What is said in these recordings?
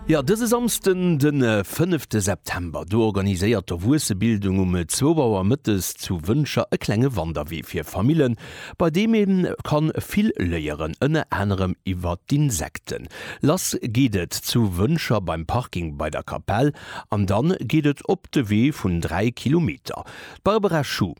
Jo, dëse Samsden, de fënnefte September, do organiséiert d'Erwuessebildung um zwou Auer mëttes zu Wëncher e klenge Wanderwee fir Famillen, bei deem ee ka vill léieren, ënner anerem iwwer d'Insekten. Lass geet et zu Wëncher beim Parking bei der Kapell an da geet et op de Wee vun dräi Kilometer. D'Barbara Schuh.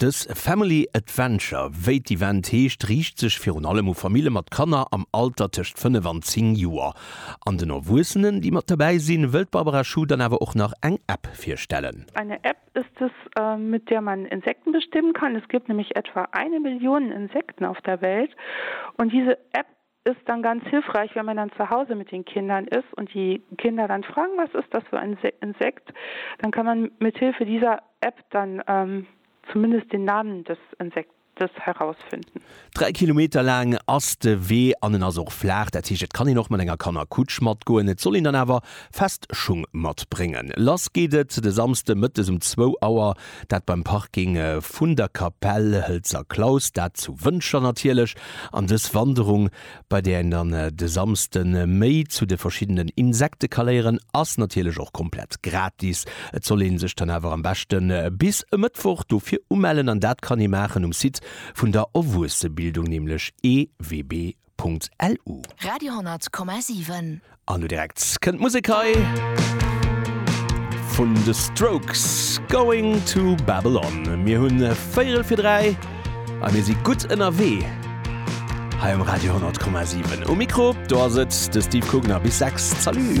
Dës Family Adventure, wéi d'Event heescht, riicht sech virun allem u Famille mat Kanner am Alter tëscht 5 an 10 Joer. An den Erwuessenen, déi mat dobäi sinn, wëll d'Barbara Schuh dann awer och nach eng App virstellen. Eine App ist es, mit der man Insekten bestimmen kann. Es gibt nämlich etwa eine Million Insekten auf der Welt und diese App Ist dann ganz hilfreich wenn man dann zu Hause mit den Kindern ist und die Kinder dann fragen was ist das für ein Insekt, dann kann man mit Hilfe dieser App dann zumindest den Namen des Insektes herausfinden. Dräi Kilometer laang ass de Wee an en ass och flaach, dat heescht et kann een och mat enger Kannerkutsch matgoen. Et soll een dann awer fest Schung matbréngen. Lass geet et de Samsde mëttes um zwou Auer. Dat beim Parking vun der Kapell Hëlzer Klaus, dat zu Wëntger natierlech, an dës Wanderung, bei där een dann de Samsde méi zu de verschiddenen Insekte ka léieren, ass natierlech och komplett gratis. Et soll ee sech dann awer am beschte bis e Mëttwoch dofir umellen an dat kann ee maachen um Site vun der Owuessebildung, nämlech ewb. www.radioscoop.lu. Radio 10 Komma 7. An lo direkt kënnt d'Musek hei vun de Strokes, Going to Babylon. Mir hunn véierel fir dräi a mir si gutt ënnerwee hei um Radio 10,7. Um Mikro do ass et de Steve Kugner bis sechs. Salut!